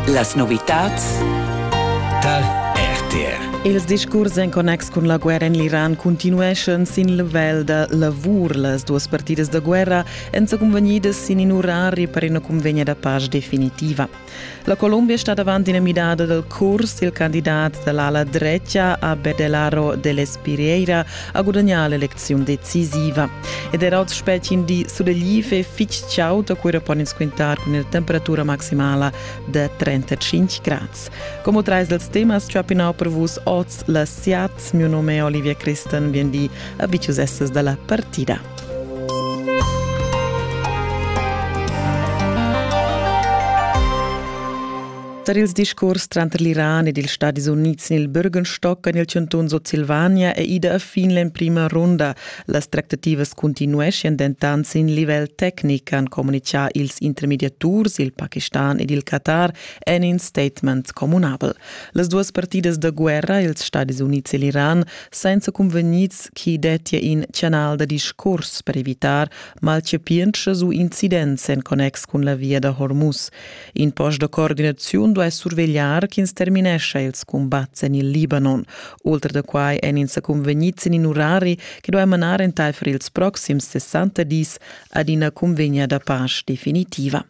Las novitads tar RTR. Ils discurs en connex cun la guerra en l'Iran continueschan sin level da lavur. Las duas partidas da guerra èn sa cunvegnidas sin in orari per ina cunvegna da pace definitiva. La Colombia è stata avanti una midada del curs. Il candidat dell'ala drecha a Bedelaro dell'Espirieira ha gudagnà l'elecziun decisiva. Ed era oz spetg in di sulegliv e fitg chaud, da cura pon ins quintar cun ina temperatura maximala da 35 grads. Como trais dals temas chapinau per vus oz la SIAT. Mio nome è Olivia Christen, bien di, abitius estes da la partida. Tar ils discurs tranter l'Iran ed ils Stadis Unids en il Bürgenstock en il chantun Sutsilvania è ida a fin l'emprima runda. Las tractativas cuntinueschian dentant sin livel tecnic, han communitgà ils intermediaturs, il Pakistan ed il Qatar en in statement communabel. Las duas partidas da guerra, ils Stadis Unids e l'Iran, senza cunvegnids chi dettia in canal da discurs per evitar malchapientschas u incidents en connex cun la via da Hormuz. In post da coordinaziun duai survegliar ch'ins terminescha ils cumbats en il Libanon. Ultra da quai èn ins sa cunvegnids en in urari che duai manar entaifer ils proxims 60 dis ad ina cunvegna da pace definitiva.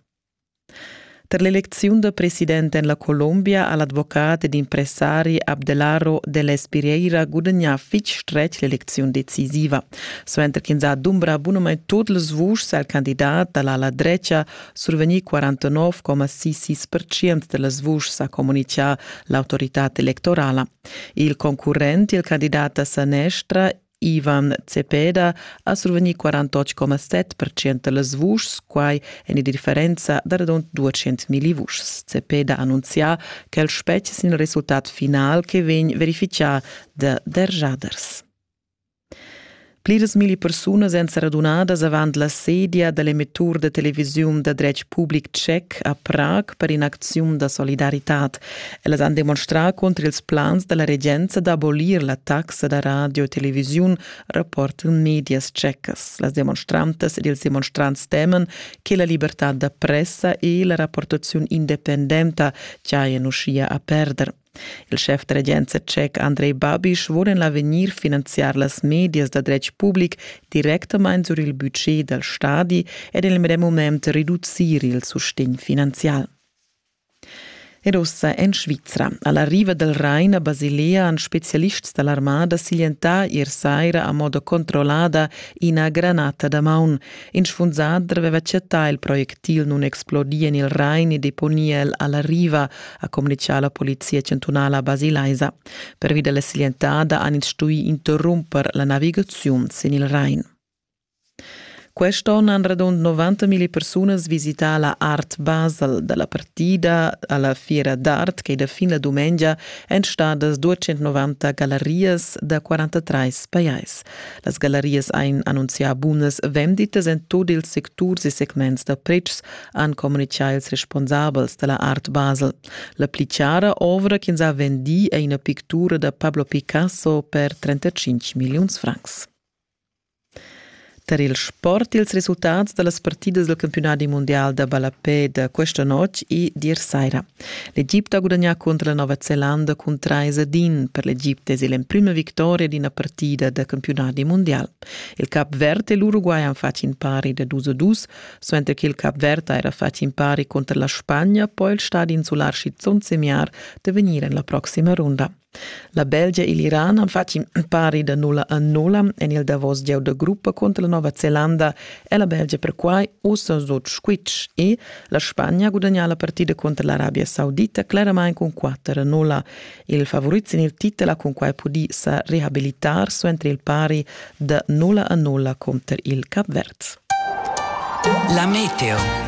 Per l'elecziun da president en la Colombia ha l'advocat ed impressari Abdelaro Deles Pereira gudagnà fitg stretg l'elecziun decisiva. Suenter ch'ins ha dumbrà bunamain tut las vuschs al candidat da l'ala drecha Survegnì 49,66% da las vuschs, ha communitgà l'autoritad electorala. Il concurrent, il candidat a sanestra, Ivan Cepeda ha survegnì 48,7% da las vuschs, quai en ina differenza da radund 200.000 vuschs. Cepeda ha annunzià ch'el spetgia sin il resultat final che vegn verifichà da derjaders. Pliras milli persunas èn sa radunadas avant la sedia da l'emettur da televisiun da dretg public tschec a Prag per in'acziun da solidaritad. Ellas han demonstrà cunter ils plans da la regenza d'abolir la taxa da radio e televisiun, rapportan medias tschecas. Las demonstrantas ed ils demonstrants teman che la libertad da pressa e la rapportaziun independenta giajan uschia a perder. Il schef da regenza tschec Andrei Babiš vul en l'avegnir finanziar las medias da dretg public directamain sur il budget dal stadi ed en il medem mument reducir il sustegn finanzial. Ed ossa en Svizra. Alla riva del Rain a Basilea han specialists dall'armada siglientà ier saira a modo controllada ina granata da maun. In sfunsader aveva chattà il projectil nunexplodir en il Rain e deponia el alla riva, ha communichà la polizia chantunala basilaisa. Pervi della silentada han ins stuì interrumper la navigaziun sin il Rain. Quest'onn han radund 90.000 persunas visità la Art Basel dalla partida alla fiera d'art che da fin la dumengia èn stadas 290 gallerias da 43 pajais. Las gallarias ein annunzià bunas venditas en tut ils secturs e segments da pretschs, han communichà ils responsabels dalla Art Basel. La pli chara ovra ch'ins ha vendì è ina pictura da Pablo Picasso per 35 milliuns francs. Tar il sport ils resultats da las partidas del campionati mondial da ballapè da questa notg e dir saira. L'Egipte ha gudagnà cunter la Nova Zelanda cun 3 ad 1. Per l'Egipte es el l'emprima victoria d'ina partida da campiunadi mundial. Il cap verd e l'Uruguay han fatg in pari da dus a dus, suenter che il cap verd ha era fatg in pari contro la Spagna, poi il stadi insular schizunt semiar da vegnir en la proxima runda. La Belgia e l'Iran han fatg in pari da nulla a nulla en il davos gieu da gruppa cunter la Nova Zelanda è la Belgia perquai ussa sut squitsch e la Spagna gudagnà la partida cunter l'Arabia Saudita cleramain cun 4 a 0. Il favorit sin il titel ha cunquai pudì sa rehabilitar suenter il pari da nulla a nulla cunter il Capverz. La meteo.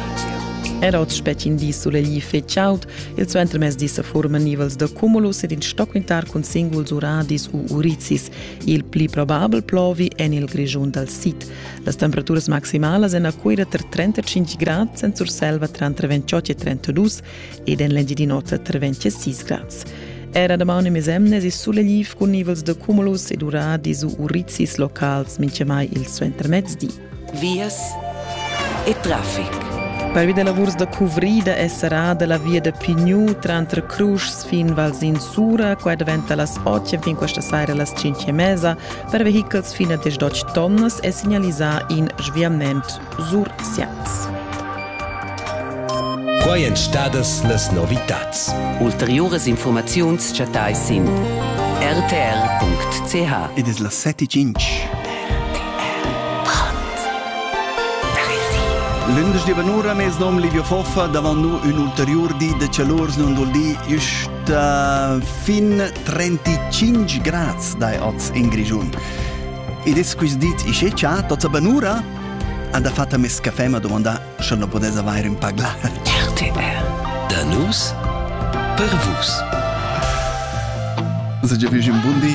Era oz spetg in di sulegli fetg chaud, il suentermezdi sa forman nivels da cumulus ed in stoquintar cun singuls uradis u urizis. Il pli probabel plovi en il Grischun dal sid. Las temperaturas maximalas en Aquira tra 35 grad, en Surselva tranter 28 e 32 ed en l'Engiadin'Ota treventia sis grads. Era damaun e mesemnes is sulegliv cun nivels de cumulus ed uradis u urizzis locals minchamai il suentermezdi. Vias e traffic. Pervi da lavurs da cuvrida è serrada la via da Pignou tranter Cruschs fin Valsin Sura, qua daventa las 8 fin questa saira las 5 e mesa, per vehichels fino a 18 tonnas è segnalisà in sviament Sursians. Quai èn stadas las novitads. Ulteriuras infurmaziuns chattai sin rtr.ch. Ed es las 7.5. Lündesch di vanura mes nom Livio Foffa, davant nous un ulterior di de chalurs non dul di, just uh, fin 35 grads dai oz in Grigiun. Ed es quist dit isce cha, tots a vanura? Ha dafatta mes caffè m'ha dumandà sche na pudess avair ün paglar. RTR Da nus per vus. Segia fich ün bun di